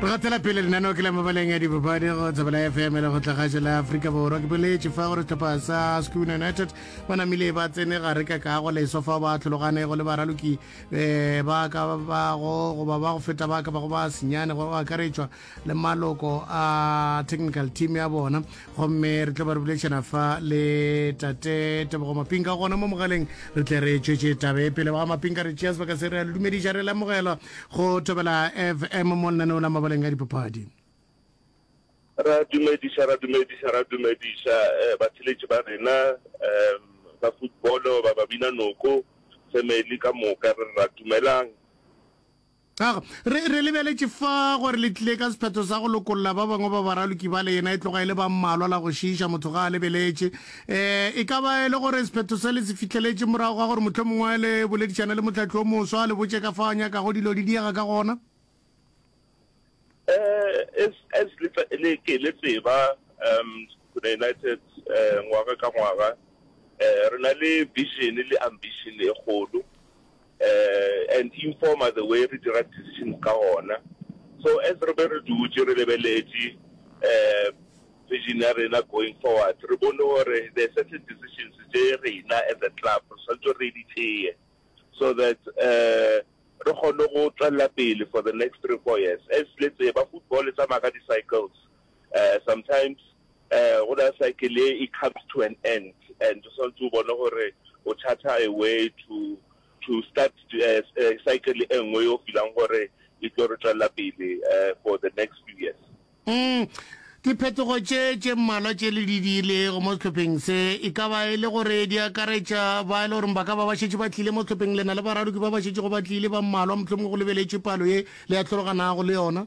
re gatela pele lenaneo ke la mabaleng ya dipapadi go tsebela fm le go tlagašo la aforika borwa ke boletše fa gore setlhopha sa schoon united ba namile ba tsene gare ka kago leso fa ba tlhologane go le baraloki um ba ka bago goba ba go feta ba ka bago ba senyane go akaretšwa le maloko a technical team ya bona gomme re tla ba re buletšana fa le tate tebogo mapinka gona mo mogaleng re tle re tšwetše tabe pele ba mapinka re tšea sebaka se re a le dumediša re lemogela go thobela fm mo lenaneo la mabaleng a dipapadi ra dumediša ra dumediša ra dumediša eh, batheletši ba rena um ba footballo ba babina noko family ka moka re ra dumelang Aga, re, re lebeletše fa gore le tlile ka sephetho sa go lokolla ba bangwe ba baraloki bale, yena e tloga e le ba mmalwa la go šiiša motho ga a lebeletše. E, e ka ba e le gore sephetho se le se fihleletše morago ga gore mohlomongwe le boledišane le mohlahli o moswa, le botše ka fao a nyakago dilo di diega ka gona. Eh, as, as le, tsa- le, ke le tseba, um, Sekhukhune United, eh, ngwaga ka ngwaga, eh, re na le vision le ambition e kgolo, eh, and e informa the way re dira decisions ka gona. So as re be re dutše re lebeletše, eh, vision ya rena going forward, re bone gore there are certain decisions tše rena as a club, re swanetše re di tseye, so that, eh, re kgone go tswelela pele for the next three four years as le tseba football e tsamaya ka di cycles um sometimes um go na cycle e e comes to an end and o santse o bone gore o charter a way to to start cycle e nngwe yo feelang gore e tlo re tswelela pele for the next few years. Umm, diphetogo tše tše mmalwa tše le di diilego mo sehlopheng se, e ka ba e le gore di akaretša ba e le gore ba ka ba ba šetše ba tlile mo sehlopheng, le na le baradoki ba ba šetšego ba tlile ba mmalwa, mohlomongwe go lebeletšwe palo ye le atlhologanago le yona?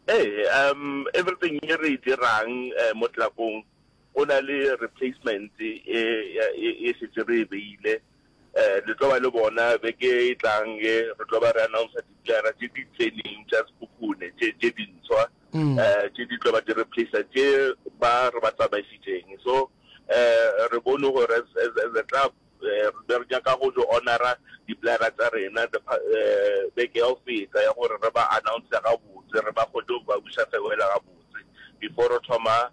Ee, um, everything ye re e dirang um mo tlelapong go na le replacement e, e, e šetše re e beile. Eh, le tlo ba le bona beke e tlang ye, re tlo ba re announcer diplayera tše di tseneng tša sekhukhune tše tše dintshwa Mm. eh tše di tlo ba di replacer tše ba re ba tsamaisitšeng so eh re bone gore as as as a club eh, re be re nyaka go tlo honora diplayera tsa rena the pa- eh, beke ya go feta ya gore re ba announce gabotse re ba kgone go ba buša fewela gabotse before re thoma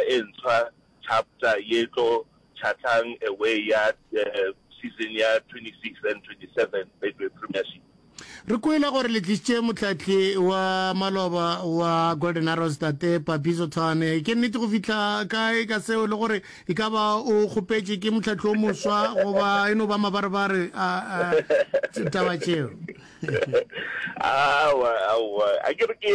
e ntshwa chapter ye tlo chathang away ya season ya 26 and 27 Betway Premiership. Re kwele gore le tlišitše motlatli wa maloba wa Golden Arrows Tate Papiso Thwane. Ke nnete go fihla kae ka seo le gore e ka ba o kgopetše ke motlatli o moswa goba e no ba mabarebare a taba tšeo? Aowa, aowa, a ke re ke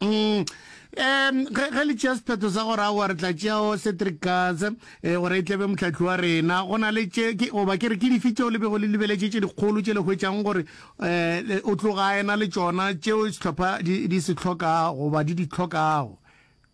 Mm. Um ge, ge le tšea sephetho sa gore aowa re tla tšeao cedric katse um eh, gore e tlebe motlhatlhi wa rena go na le tše ke- goba ke re ke dife tšeo le bego le lebeletše tše dikgolo tše le hwetšang gore um o tloga ena le tšona tšeo sehlopha di, di se hlokago goba di di hlokago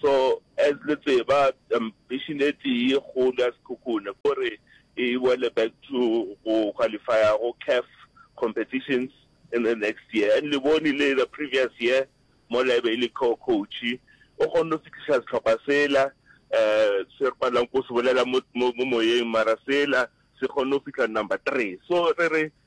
So as le tseba ambition e tee kgolo ya Sekhukhune ke gore e boele back to go qualifier go CAF competitions in the next year and le bone le the previous year mo la ebe e le co-coach o kgonne go fihliša sehlopha sela um se re palang ko se bolela mo moyeng mara sela se kgonne go fihla number three so re re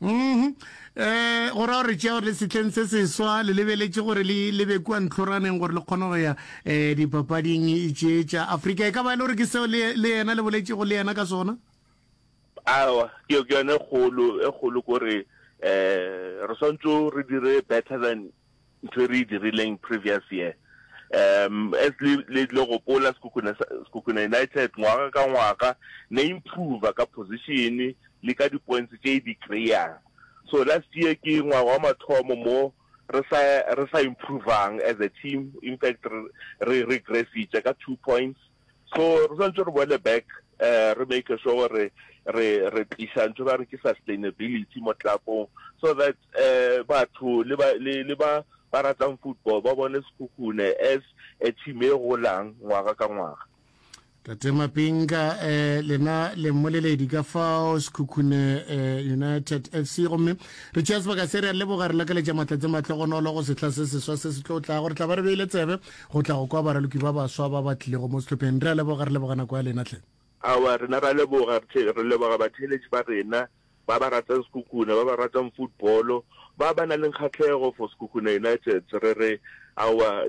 um go ra gore tšeo le setleng se seswa le lebeletše gore le lebe kua ntlhoraneng gore le kgone go ya um dipapading tše tša afrika e ka ba e le gore ke seo le yena le boletšego le yena ka sona awa ke yone e kgolo e kgolo kore um re swantse re dire better than ntho e re e dirileng previous year um as le le tle gopola sekhukhune sekhukhune united ngwaga ka ngwaga ne improve ka position le ka di-points tše di kry-ang so last year ke ngwaga wa mathomo mo re sa re sa improvang as a team in fact re re regressitše ka two points So re swantse re boele back eh re make sure gore re re tlisa ntho ba re ke sustainability mo tlakong so that eh batho le ba le le ba ba ratang football ba bone sekhukhune as a team e golang ngwaga ka ngwaga tate mapinga eh lena le mmoleledi ka fao sekhukhune eh, united f c gomme re tšea sebaka se re a leboga re lakaletša maatla tse matlogonolo go sehla se seswa se se tlo tlago re tla ba re beile tsebe go tla go kwa baraloki ba baswa ba ba tlilego mo sehlopheng. Re a leboga, re leboga nako ya lena, hle. Aowa, rena ra leboga, re leboga batheeletši ba rena, ba ba ratang Sekhukhune, ba ba ratang football-o, ba ba nang le kgahlego for Sekhukhune United. Re re, aowa,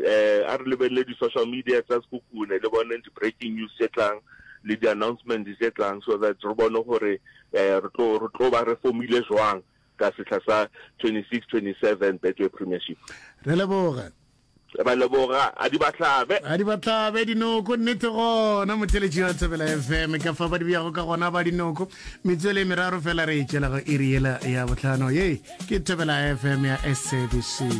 a re lebelele di-social media tsa Sekhukhune, le boneng di-breaking news tše tlang, le di-announcement tše tlang, so that re bone gore re tlo, re tlo ba re fomile jwang ka sehla sa 26, 27 Betway Premiership. Re a leboga. Re ba leboga. A di ba hlabe. A di ba hlabe dinoko. Nnete gona motheletši wa Thobela FM ka fa ba di beyago ka gona ba dinoko. Metswelo e meraro fela re e tšwela go iri yela ya bohlano. Ye ke Thobela FM ya SABC.